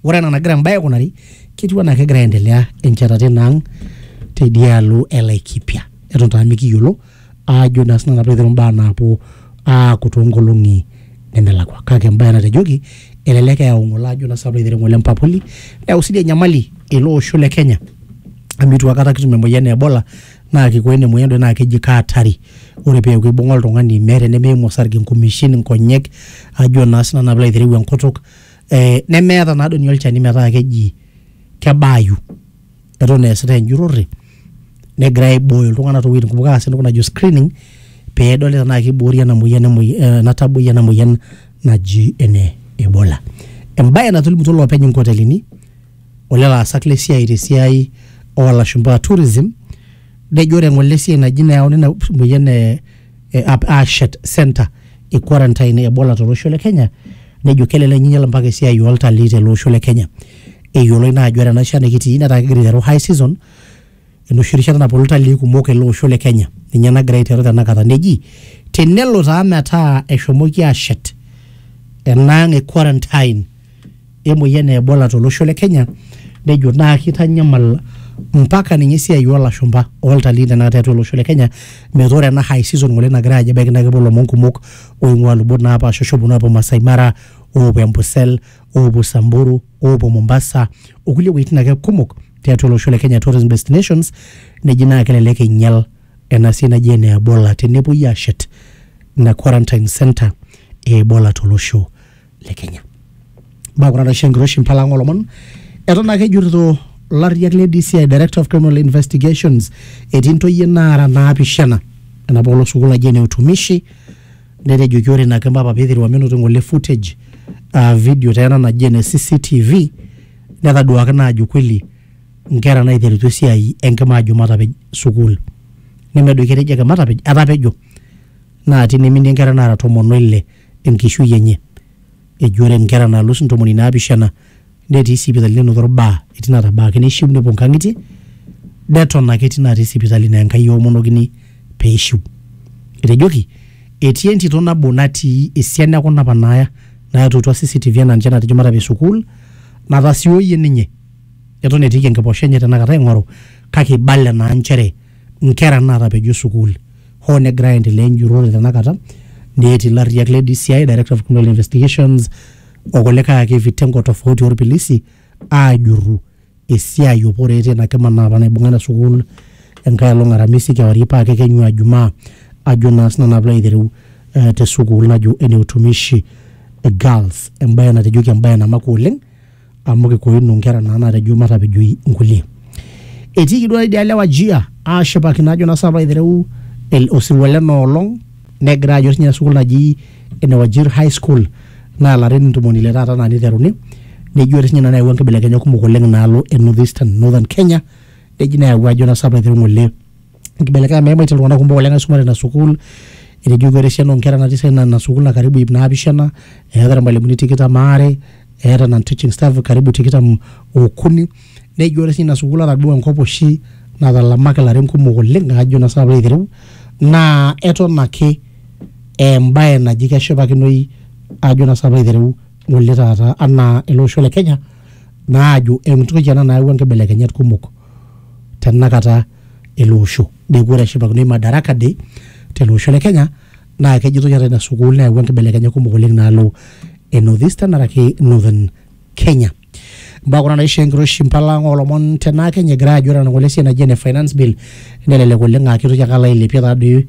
Ore ena nagira embae aikunari ketiu anaa kegira aendelea enchetata ina ang teidialo e Laikipia. Eton taa mikiyiolo aajo naa sinanu apa aiteru imbaa naapuo aaku toonkolong'i nemelakua. Kake embae natejoki elelek eyau ng'ole ajo naa sinanu aiteru ng'ole empapuli neyau sii dii enyamali ele osho le Kenya amu eitu aikata kitum emoyian e Ebola naa kiko ina moyian doi naa keji ke hatari. Ore peeku eibung'a oltung'ani meeta enimiimu osarge, nkumeshin, nkonyek ajo naa sinanu piilo aitereu enkutuk Eh, nemeeta naa doni olchani metaa keji kebaayu eton eesitae enjurrore negira aibooyo iltung'anak towuejitin kumok aas entoki najo screening pedoli tenaa kiboori ena moyian ena taboi ena moyian naji ene ebola embaye natolimutuo iloopeny inkotelini olelo aasak lesiai tesiai olashumpa tourism nejo ore ng'ole esiai naji nayauni ina moyian e eh, ap- aashet center e quarantine ebola tolosho le kenya nejo kelelek ninyial mpaka esiai oltalii tele osho le kenya eyioloi naa ajo ore ena shan nikitii netaa kegira aiteru high season enoshi rishata naponu iltalii kumok ele osho le kenya ninye nagira aiteru tenakata neji tenelo taa metaa eshomoki ashet enaang e quarantine emoyian e Ebola tolosho le Kenya nejo naa kitanyamal mpaka ninye esiai oolashumba oltalii tenakata tiatua olosho le Kenya metaa ore ena high season ngole nagira ajo ebaiki naa kepuo ilomon kumok oing'ua lubot naapasha oshi ooponu aapuo Masai Mara oopuo Ambosel oopuo Samburu oopuo Mombasa okulie wueitin ake kumok tiatua olosho le Kenya tourism destinations neji naa kelelek einyial ena siai naji ene Ebola tenepuoi aashet ina quarantine centre e Ebola tolosho le Kenya. Mbaa kuna naisho enkiroshi mpala ang' olomon eton ake ejurrito larriak le DCI Director of Criminal Investigations etii ntoyie naara naapishana enapa olong sukuul naji ene utumishi netejoki ore ina kima apa peiteru menoto ng'ole footage aa video taa ena naji ene CCTV netaduaki naa ajo kweli nkera naiterutua esiai enkima ajo matapej sukuul nemedoiki etejo ake matapej etapejo naa tine iminie nkera naara tomon oile enkishui enye. Eji ore nkera naalus ntomoni naapishana netii sipitali nenoto ilbaa etii natabaaki neishiu nepuo nkang'itie neton ake etii natii sipitali naa Enkai eomonokini pee eishiu. Etejoki etii entito nabo natii esiana e kuna apa naaya naatuutua CCTV enaa ninche naatejo matapej sukuul natasioyie ninye eton etiiki enkiposha enye tenakata aing'oru kake eibala naa nchere nkera naatapejo sukuul hoo negira aendelea enjurrore tenakata neeti ilarriyiak le DCI, Director of Criminal Investigations o kulikae ake vitengo tofauti orpilisi aajurru esiai o poreet ina kima naa apa naibung'a ina sukuul enkae olong aramisi kewarie paa kekenyu aa jumaa ajo naa sinanu naa piilo aitereu eh, te sukuul najo ene utumishi girls embaye natejoki embaye namakwa oleng amu kikoino nkera naa natejo matapejoi nkulie etiiki duo idia lewa jia aashipakino ajo naa sapa aitereu el- osirua lena olong negira ajo sinye sukuul naji ene Wajir high school naa larin ntomoni ile taata naa niteruni nejo ore sinye ina neyawua nkibelekenyat kumok oleng naalo e northeastern northern kenya neji neyawua ajo naa sapa aitereu ng'ole nkibelekenyat meimaitie iltung'anak kumok oleng aisuma tena sukuul etejo ore esiana oonkera natii sii ina sukuul naa karibu iip naapishana eeta irmalimuni tikitam aare eeta non teaching staff karibu tikitam okuni nejo ore sii ina sukuul ata duo enkop oshi natalamaki ilarin kumok oleng ajo naa sinanu piilo aitereu naa eton ake embaye naji keshipakinoi ajo naa sinanu piilo aitereu ng'ole taata anaa ele osho le kenya naa ajo entoki ena nayawua inkibelekenyat kumok tenakata. ele osho neeku ore eshipakinoi Madaraka Day tele osho le Kenya naa kejitoi ata ina sukuul neyawua nkibelekenyat kumok oleng naalo e North Eastern araki Northern Kenya. Mbaa kuna naishoo enkiroshi mpala ang oolomon tenaa Kenya egira aajo ore enang'ole esiai naji ene finance bill nelelek oleng aa keitoki ake alo ailepie taadoi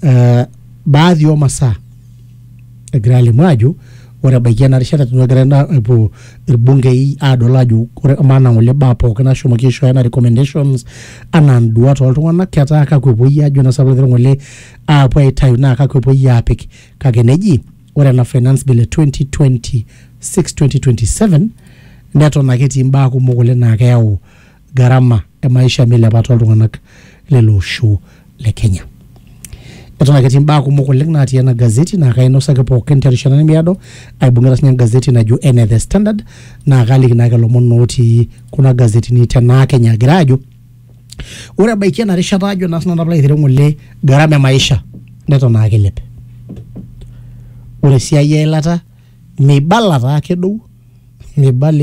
eh, baadhi oo masaa egira alimu ajo ore ebaiki ena rishata eton egira ena epuo irbungei adol ajo ore amaa naa ngole baa pookin nashomoki aishooyo anaa recommendations anaa nduat oltung'anak ketaa kakwa epuoi ajo naa sababu ngole aapuo aitayu naa kakwa epuoi aapik kake neji ore ena finance bill e 2026 2027 neton ake etii imbaa kumok oleng naa keyau garama e maisha meilepa tooltung'anak lele osho le Kenya. Eton ake etii imbaa kumok oleng naatii ena gazeti naa kainosaki pookin terishata nemiado aibung'ita sinye engazeti najo ene The Standard naa kaaliki naake ilomon ootii kuna gazetini tenaa Kenya agira aajo ore ebaiki ena rishata ajo naa sinanu piilo aitereu ng'ole garama e maisha neton ake eilep. Ore esiai eilata meibala taa kedou meibala